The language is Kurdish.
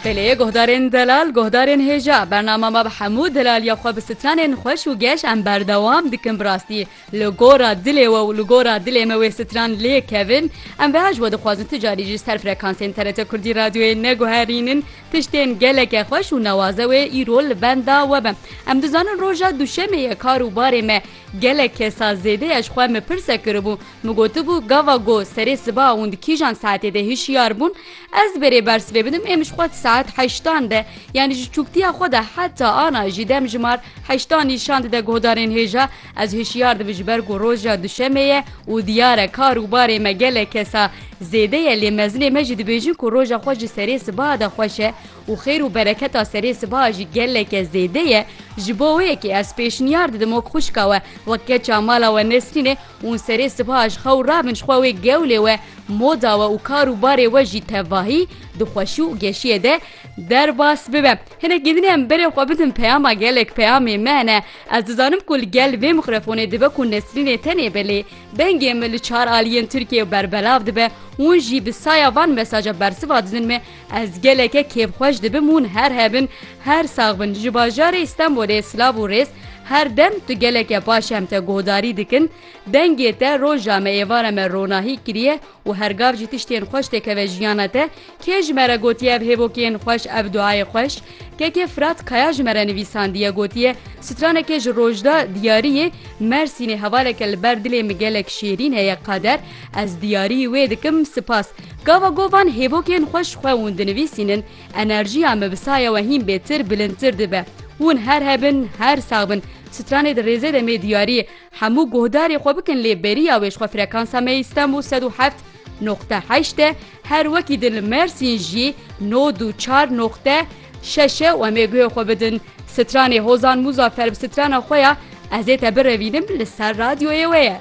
Belê guhdarên delal guhdarên hêja bernama me bi hemû delaliya xwe bi stranên xweş û geş em berdewam dikin bi rastî li gora dilê we û li gora dilê me wê stran lê kevin em bi hej we dixwazin tu carî ji ser frekansên TRT Kurdî radyoyê neguherînin tiştên geleke xweş û nawaze wê îro li benda we be em dizanin roja duşemê ye kar û barê me Gelek kesa zêdeya ji xwe me pirse kiribû, min gotibû gava go serê siba hûn di kîjan saetê de hişyar bûn? Ez berê bersivê bidim êm ji xwe di saet heştan de yanî ji çûktiya xwe de heta ana jî demjimar heştan nîşan dide guhdarên hêja ez hişyar dibim ji ber ku roja duşemê ye û diyar e kar û barê me gelek kesa zêde ye lê mezinê me jî dibêjin ku roja xwe ji serê siba de xweş e û xêr û bereketa serê sibaha jî geleke zêde ye, ji bo wê yekê ez pêşniyar didim ok xwişka we wek keça mala we Nesrînê ûn serê sibaha ji xew rabin ji xwe wê gewlê we, moda we û kar û barê we jî tevahî, di xweşî û geşiyê de derbas bibe. Hinek gêdinê em berê xwe bidin peyama gelek peyamê me hene. Ez dizanim ku li gel vê mîkrofonê dibe ku Nesrînê tenê be lê dengê min li çar aliyên Tirkiyeyê berbelav dibe û hûn jî bi saya van mesaja bersiva didin me, Ez geleke kêfxweş dibim hûn her hebin her sax bin ji bajarê Stenbolê silav û rêz her dem tu geleke baş em te godarî dikin dengê te roja me êvara me ronahî kiriye û her gav jî tiştên xweş têkeve jiyana te kê ji me re gotiye ev hêvokê yên xweş ev duayê xweş KK Firat Kaya ji me re nivîsandiye gotiye, stranekê ji Rojda diyariyê Mersînê hevaleke li ber dilê min gelek şêrîn heye Kader ez diyariyî wê dikim sipas. Gava go van hêvokên xwe ji xwe hûn dinivîsînin enerjiya min bi saya we hîn bêtir bilindtir dibe. Hûn her hebin her sax bin. Stranê di rêzê de mê diyariyê hemû guhdarê xwe bikin lê beriya wê ji xwe frekansa me yê Stenbûl sed û heft noqte heşt e Her wekî di li Mêrsîn jî nod û çar noqte şeş e û em ê guhê xwe bidin stranê Hozan Muzaffer bi strana xwe ya Ez ê te birevînim li ser radyoyê wê ye.